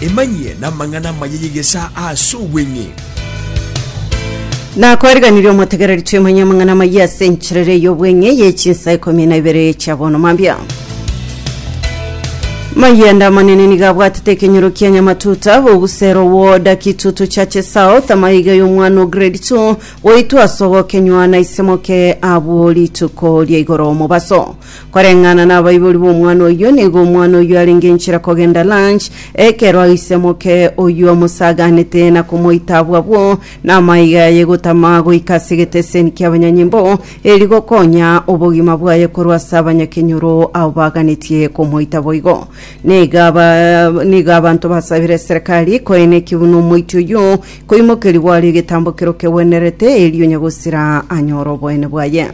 Emanyie namang'ana amaya y'egesaa ase obweng'e. Nakwariganirie omotegereri twemanye amang'ana amaya ase encherera ey'obweng'e ye chinsa ikomi na ibere chia bono mambia mayende amanene niga abwatete ekenyoro kia nyamatuta bogusero woda kitutu cha chisao tamaiga y'omwana o grade 2 goitwa ase ogokenywa na isemoke abwo rituko ria igoro mobaso Koreng'ana nabaibori b'omwana oyio, nigo omwana oyio arenge nchera kogenda Lunch, ekero aisemoke oyio amosaganete na komoita abwo abwo namaiga yaye gotama goika ase egeteseni kiabanyanyimbo, eri gokonya obogima bwaye korwa ase abanyakenyoro abo baganetie komoita boigo. Nigo aba nigo abanto basabire eserekari koeneki buna omoiti oyio, Koimokeria gwario egetambokero kegwenerete, erio Nyagosira anyore oboene bwaye.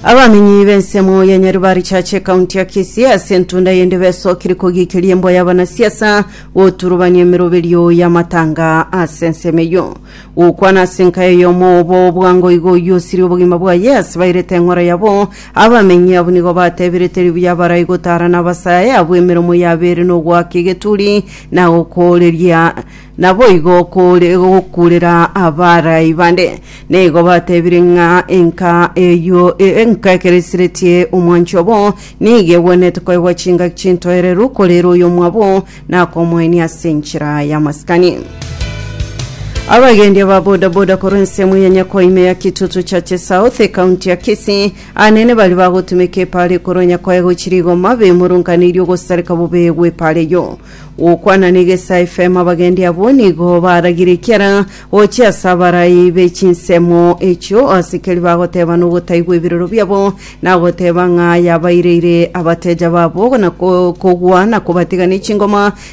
Abamenyi b'ensemo ya Nyaribari Church ekaunti ya Kisii ase entunda yende besokirie kogiikeria emboa y'abanasiasa goturubania emeroberio y'amatanga ase ensemo eyio. Gokwana ase enkayo y'omo obo bwango igo oyio osirie obogima bwaye ase bairete eng'ora yabo. Abamenyi abwo nigo batebirete ribuya barai gotaara nabasae abwo emeromo yabeire nogoaka egeturi na gokooreria, naboigo okoore gokuurera abarai bande. Nigo batebire ng'a enka eyio e- enka ekeresiretie omwanchi obo nigo egwenerete koegwa chingaki chintoereru, korere oyomwabo nakomoenia ase enchera y'amasikani. Abagendi aba bodaboda korwa ensemo ya Nyako ime ya Kitutu Churches South, ekaunti ya Kisii, Anene baria bagotumeka epaara ekoro onye koegwe chirigoma, bemurunkaneirie ogosareka bobe gw'epaara eyio. Gokwana negesa efemo abagendi abwo nigo baragire ekiara gochia ase abarai be chinsemo echio, ase keria bagoteba nogotaigwa ebiroro biabo, na goteba ng'a yabaireire abateja babo na kogwa na kobatiga ne chingoma,